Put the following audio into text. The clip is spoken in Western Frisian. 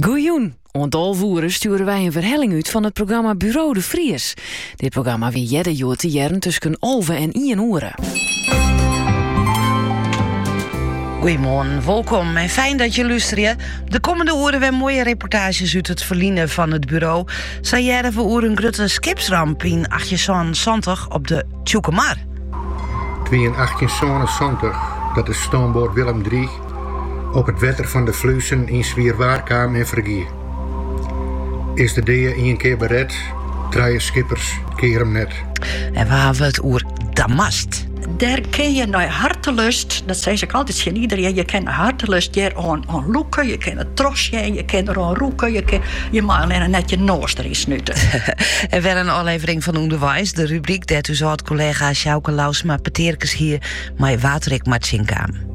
Goejûn! Oant alve oere stjoere wy in werhelling út fan it programma Buro de Vries. Dit programma wie earder hjoed te hearren tusken alve en ien oere. Goeiemoarn, wolkom en fijn dat je lústerje. De kommende oeren wer moaie reportaazjes út it ferline fan it buro. Sa hearre we oer in grutte skipsramp yn 1870 op de Tsjûkemar. It wie yn 1870 dat de stoomboat Willem III Op it wetter fan de Fluezen yn swier waar kaam en fergie. Is de dea ien kear beret, trije skippers keare him net. En we hawwe it oer damast. Dêr kin je nei hartelust, dat sis ik altyd tsjin iderien, je kin hartelust hjir oan lûke, je kin it trochsjen, je kin der oan rûke, je, kin, je mei allinne net je noas deryn snute. En wer in ôflevering fan Underweis, de rubryk dêr't ús âld-kollega Sjouke Louwsma petearkes hie mei wa't er ek mar tsjinkaam.